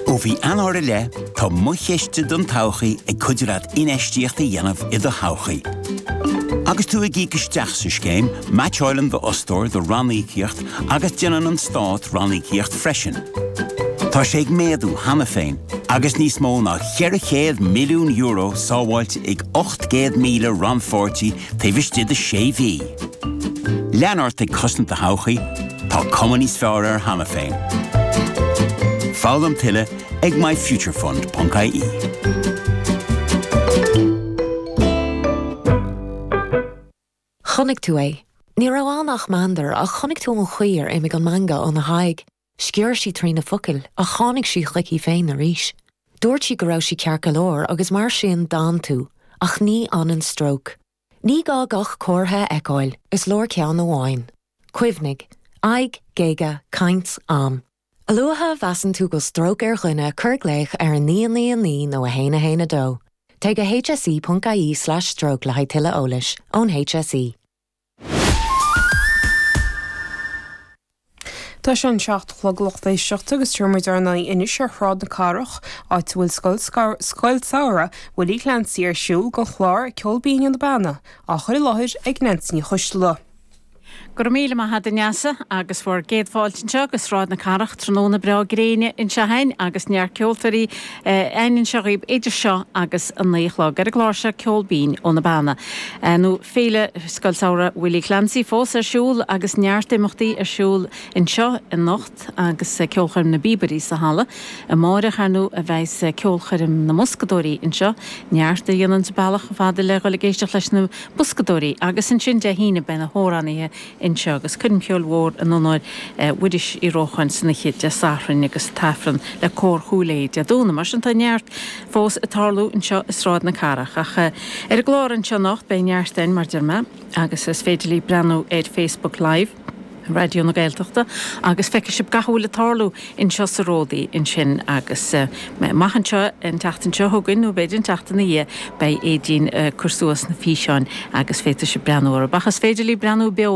Ó mhí Eanáir i leith, tá Mo Chiste don Todhchaí ag cuidiú leat infheistíocht a dhéanamh i do thodhchaí. Agus tú ag íoc isteach sa scéim, meaitseálann d'fhostóir do ranníocaíocht agus déanann an Stát ranníocaíocht freisin. Tá sé ag méadú cheana féin agus níos mó ná €400 milliún sábháilte ag 800,000 rannpháirtí taobh istigh de sé mhí. Lean ort ag cosaint do thodhchaí, tá cuma níos fearr air cheana féin. Foghlaim tuilleadh ag myfuturefund.ie. Chonaic tú é. Ní raibh ann ach meandar, ach chonaic tú an chaoi ar imigh an meangadh óna haghaidh. Sciorr sí trí na focail ach tháinig sí chuici féin arís. Dúirt sí go raibh sí ceart go leor agus mar sin d'fhan tú, ach ní fhanann stróc. Ní gá gach comhartha a fheiceáil, is leor ceann amháin. Cuimhnigh, aghaidh, géaga, caint, am. A luaithe a mheasann tú go bhfuil stróc ar dhuine cuir glaoch ar 999 nó 112. Téigh go hse.ie/stroke le haghaidh tuilleadh eolais ón HSE. Tá sé an seacht a chlog lucht éisteachta agus téann muid ar aghaidh anois ar Shráid na Cathrach, áit a bhfuil Scoil Samhraidh Willie Clancy ar siúl don chlár, ceol binn ó na Beanna á chur i láthair ag Neansaí Ní Choisdealbha. Go raibh míle maith agat a Neasa agus bhur gcéad fáilte anseo go Sráid na Cathrach tráthnóna breá gréine anseo againn agus neart ceoltóirí againn anseo dhaoibh idir seo agus a naoi a chlog. Ar an gclár seo, ceol binn ó na Beanna. nó Féile Scoil Samhraidh Willie Clancy fós ar siúl agus neart imeachtaí ar siúl anseo anocht agus ceolchoirm na bPíobairí sa halla amáireach ar ndóigh beidh ceolchoirm na mboscadóirí anseo neart a dhéananns a mbealach chomh fada le dhul ag éisteacht leis na boscadóirí agus ansin Dé hAoine beidh na hamhránaithe anseo agus coirmcheoil mhór in onóir Mhuiris Uí Rócháin san oíche Dé Sathairn agus an tAifreann le Cór Chúil Aodha Dé Domhnaigh. Mar sin tá neart fós ag tarlú anseo i Sráid na Cathrach. Ach ar an gclár anseo anocht beidh neart againn mar deir mé agus is féidir libh breathnú ar Facebook Live Raidió na Gaeltachta agus feicfidh sibh gach a bhfuil ag tarlú anseo sa Ródaí ansin agus amach anseo. An tseachtain seo chugainn nó b'fhéidir an tseachtain ina dhiaidh beidh Aedín ag cur suas na físeáin agus féadfaidh sibh breathnú orthu. Ach is féidir libh breathnú beo